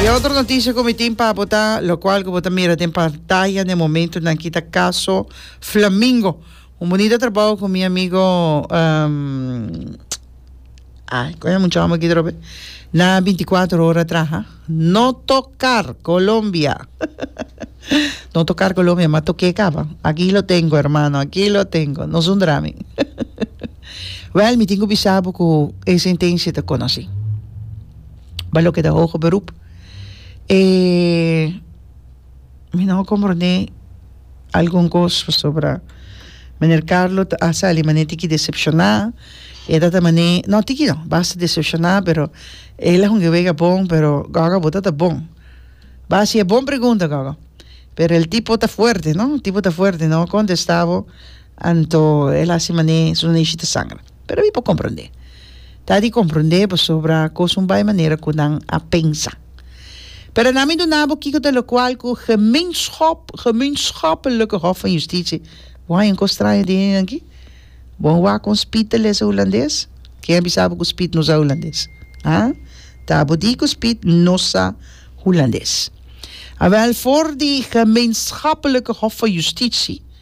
E otro noticia cu mi tin pa bo ta lo cual cu bo ta mira den pantaya na e momento nan ki ta caso Flamingo. Un bonito trabajo cu mi amigo um, ay, con e muchacho aquí drobe. Na 24 horas traha. No tocar Colombia. no tocar Colombia, ma toqué caba. Aquí lo tengo, hermano, aquí lo tengo. No zundra mi. Wèl, mi tin ku bisa bo ku e sentensia ta konosí. Ba loke ta hoge beroep, e mi no a komprondé algun kos pasobra meneer Carlo a sali mané tiki desepshoná, i a tabata mané, no tiki no, basta desepshoná, pero el a hunga wega bon, pero gògò bo tabata bon. Ba hasi e bon pregunta gògò, pero el tipo ta fuerte, no, el tipo ta fuerte, no a kontestá bo Anto el a hasi man'é su neshi ta sangra. Pero mi por komprondé. Ta di komprondé pasobra kos un bai manera ku nan a pensa. Pero na mi duna bo kiko ta lokual ku gemeenschap, gemeenschappelijke hof van justitie. Bo haña un kos straño di hende aki? Bo a wak kon Spit ta lesa hulandes? Ken a bisa bo ku Spit no sa hulandes? Ha? Ta bo di ku Spit no sa hulandes? Awèl, for di gemeenschappelijke hof van justitie,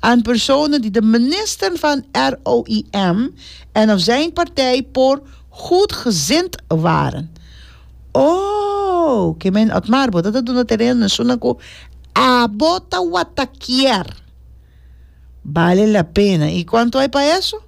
En persona di de minister van ROIM en of zijn partij por goedgezind waren. Oh, ke men Otmar, bo ta ta duna tereno na esuna ku abo ta wata kier. Bale la pena. I kuantu ai pa eso?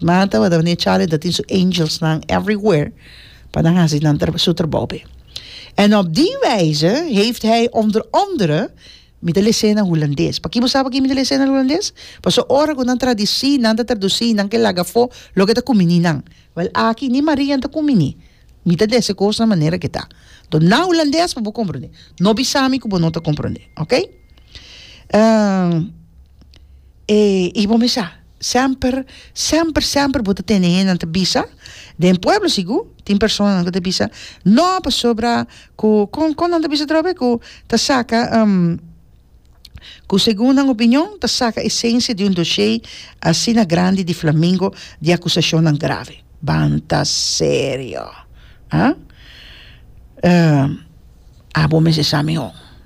Nan tabata meneer Charlie ta tin su angels nan everywhere pa nan hasi nan su trabao be. En op die wijze heeft hij onder andere mi ta lese na Hulandes. Paki bo sa paki mi ta lese na Hulandes? Paso ora ku nan tradisi, nan ta tradusi, nan ke laga afo loke ta kumini nan. Wel aki ni Maria ta kumini. Mi ta dese kos na manera ke ta. Enton na Hulandes pa bo komprondé. No bisa mi ku bo no ta komprondé. Oke? E i bo me sa. Semper, semper, semper bo ta tende hendenan ta bisa, den pueblo sigur tin personanan ku ta bisa no pasobra ku kon kon nan ta bisa atrobe ku ta saka ku segun nan opinion ta saka esensia di un doshé asina grandi di flamingo di akusashonnan grave ban ta serio a bo mes esami ho.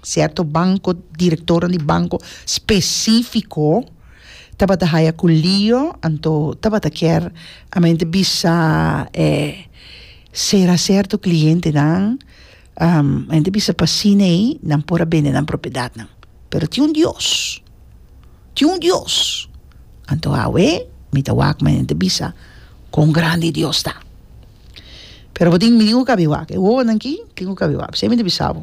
Cierto banco, directornan di banco specifico tabata haya cu lio, anto tabata kier amente bisa e cera cierto clientenan, mente bisa pa cine ey nan por a bende nan propiedadnan, pero tin un Dios, tin un Dios, anto awe mi ta wak mi ta bisa cuan grandi e Dios ta, pero bo tin mi tin cu cabi wak, e wowonan aki tin cu cabi wak, bisey mi ta bisa bo.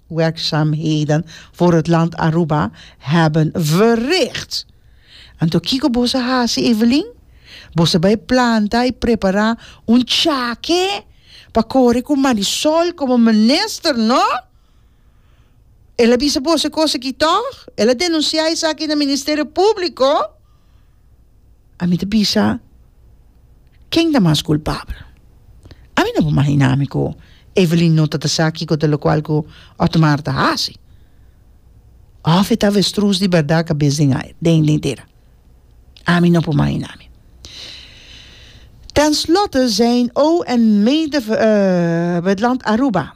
Werkzaamheden voor het land Aruba hebben verricht. Anto kiko boso a hasi Evelyn? Boso bai planta y prepara un chake pa kore cu Marisol como minister no? El a bisa boso e cosa aki toch? El a denuncia esaki na Ministerio Publico? ami ta bisa ken ta mas culpabel ami no por imaginá mi cu Evelyn no ta ta sa kico ta locual cu Otmar ta haci of e ta avestruz di berdad cabes den ai den dera ami no por imaginá mi ten slotte zijn oom en medewerkster uit land Aruba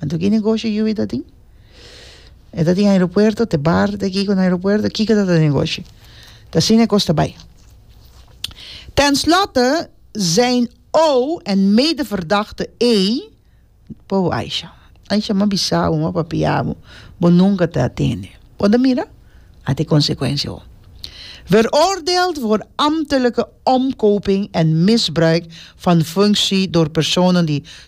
Anto ki negoshi yu e ta tin? E ta tin aeropuerto, te bar ta aki ku na aeropuerto, kiko ta ta negoshi? Ta asina e kos ta bai. Ten slotte zijn ou en medeverdachte E por bo Aisha. Aisha m'a bisa bo, m'a papia bo, bo nunka ta atende. Bo ta mira? At e konsekuensia ho. Veroordeeld voor ambtelijke omkoping en misbruik van functie door personen die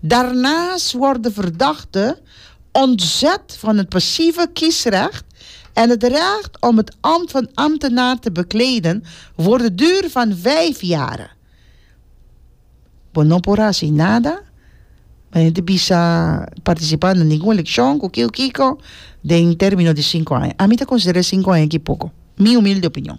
Daarnaast wordt de verdachte ontzet van het passieve kiesrecht en het recht om het ambt van ambtenaar te bekleden voor de duur van vijf jaren. Bo no por hasi nada, bo no te bisa participá na ningun eleccion, cu kiko kiko, den termino di cinco aña. Ami ta considera cinco aña ki poco, mi humilde opinion.